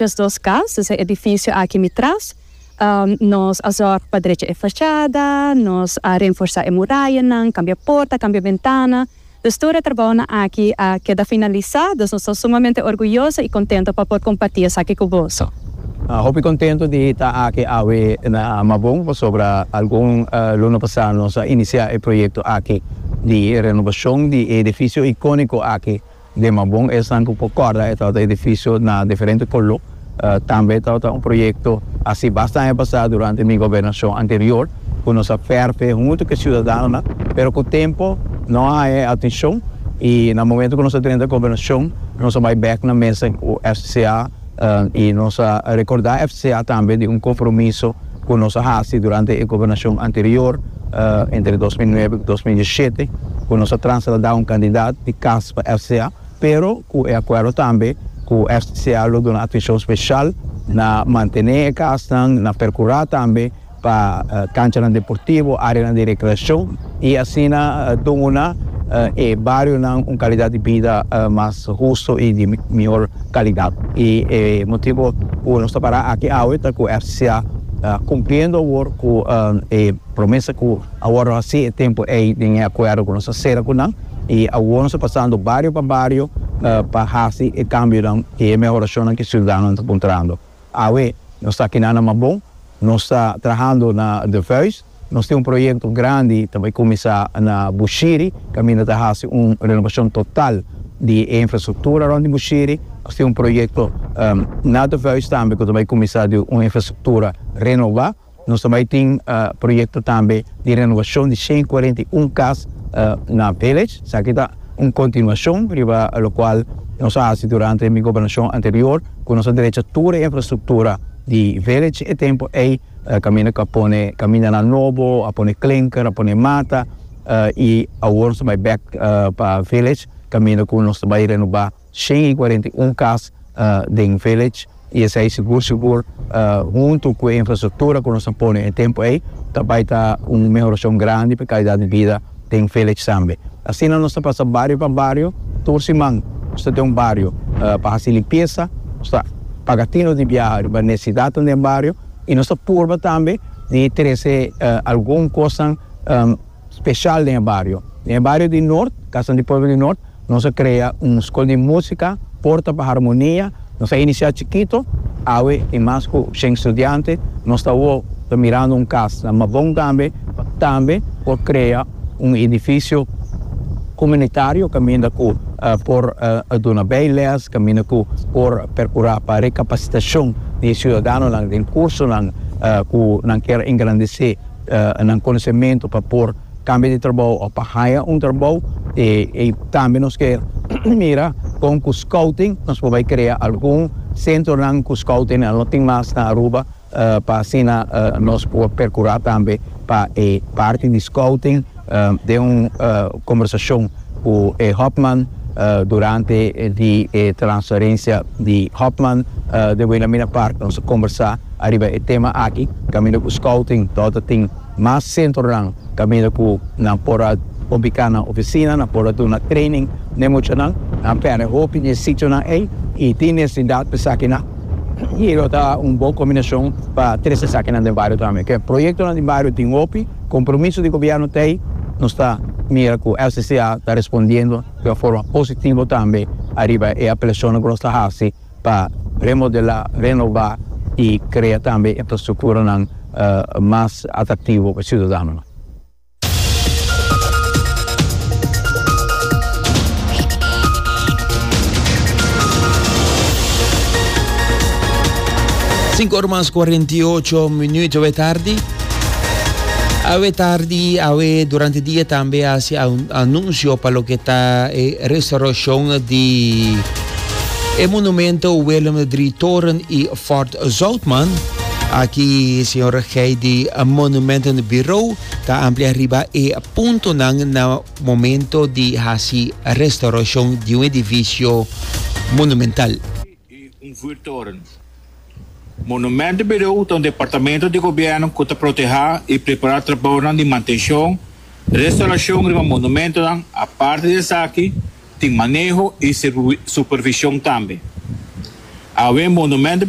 Des dos kas, des e edifisio aki mi tras, nos a zòrg pa drecha e fashada, nos a renforsá e murayanan, kambia porta, kambia bentana. Des tur e trabounan aki a keda finalisá, dus nos ta sumamente orguyoso i kontento pa por kompartí esaki ku boso. Hopi kontento di hita aki awe na Mabon pasobra algun luna pasá nos a inisiá e proyekto aki di renobashon di e edifisio ikóniko aki. Den Mabon esnan cu por corda e tabata edificio na diferente color. Tambe tabata un proyecto haci basta aña pasa durante mi gobernacion anterior cu nos a ferfe hunto cu e ciudadanonan pero cu tempo no a haya e atencion y na momento cu nos a drenta gobernacion nos a bay bek na mesa cu FCCA I nos a rekordá FCA tambe di un kompromiso ku nos a hasi durante e gobernashon anterior, entre dos mil nuebe ku dos mil diesishete, ku nos a trasladá un kandidat di kas pa FCA, pero ku e akuerdo tambe ku FCA lo duna atenshon speshal na mantené e kasnan, na perkurá tambe pa kanchanan deportivo, areanan di rekreashon i asina duna e barionan un kalidat di bida mas hustu i di mihor kalidat. I e motibu ku nos ta pará aki awe ta ku FCCA ta kumpliendo awor ku e promesa ku awor nos a hasi e tempu ei den e akuerdo ku nos a sera ku nan i awor nos ta pasando bario pa bario pa hasi e kambionan i e mehorashonnan ku e siudadanonan ta puntrando. Awe, nos ta kina na Mabon. Nos ta trahando na De Vuijs. Nos tin un proyekto grandi ta bai kuminsá na Bushiri, kaminda ta hasi un renobashon total di e infrastruktura rònt di Bushiri. Nos tin un proyekto na De Vuijs tambe ku ta bai kuminsá di un infrastruktura renobá. Nos ta bai tin proyekto tambe di renowashon di shen kuarenta i un kas na Village. Esaki ta un kontinuashon riba lokual nos a hasi durante mi gobernashon anterior ku nos a drecha tur e infrastruktura di Village. E tempu ei kaminda ku a pone kamindanan nobo, a pone klinker, a pone mata i awor nos ta bai bèk pa Village kaminda ku nos ta bai renobá. Shen i kuarenta i un kas den Village i esei sigur sigur huntu ku e infrastruktura ku nos a pone na e tempu ei ta bai ta un mehorashon grandi pa e kalidat di bida den Village tambe. Asina nos ta pasa bario pa bario, tur siman nos ta den un bario pa hasi limpiesa, nos ta paga tino di biaha riba nesesidatnan den bario i nos ta purba tambe di trese algun kosnan special den e bario. Den e bario di Noord, Kasanan di Pueblo di Noord, nos a crea un School di Musica, Porta pa Harmonia, nos a inicia chikito, awe tin mas cu shen studiante, nos ta awor ta mirando un cas na Mabon tambe, pa tambe por crea un edificio comunitario caminda cu por duna bay les, caminda cu por percura pa recapacitacion di e ciudadanonan den cursonan cu nan kier engrandece. nan konosementu pa por kambia di trabou òf pa haya un trabou. E e tambe nos ke mira kon ku skouting nos por bai krea algun sentronan ku skouting nan lo tin mas na Aruba pa asina nos por perkurá tambe pa e parti di skouting. Den un kombersashon ku e Hofman durante di e transferensia di Hofman den Wilhelmina Park nos a kombersá ariba e tema aki kaminda ku Scouting ta ota tin mas sentronan kaminda ku nan por a ubiká nan ofisina, nan por a duna training n'e muchanan. Nan pèrdè hopi di e sitionan ei i tin necesidad pa esakinan i lo ta un bon kombinashon pa tres esakinan den bario tambe. Ke proyektonan di bario tin hopi. Compromiso di Gobierno ta ey, nos ta mira cu LCCA ta respondiendo di un forma positivo tambe ariba e apelacionnan cu nos ta haci pa remodela, renova y crea tambe infrastructuranan mas atractivo pa e ciudadanonan. Sinku ora mas cuarenta y ocho minuut ora e tardi. Awe tardi, awe durante dia tambe hasi anuncio pa loke ta e restauracion di e monumento Willem drie Toren y Fort Zoutman. Aki señor Gey di Monumenten Bureau ta amplia riba e puntonan na momento di hasi restauracion di un edificio monumental. i un vuurtoren. Monumentenbirou ta un departamento di gobièrnu ku ta protehá i prepará trabaonan di mantenshon, restaurashon riba monumentonan, aparte di esaki tin maneho i supervishon tambe. Awe Monumentenbirou.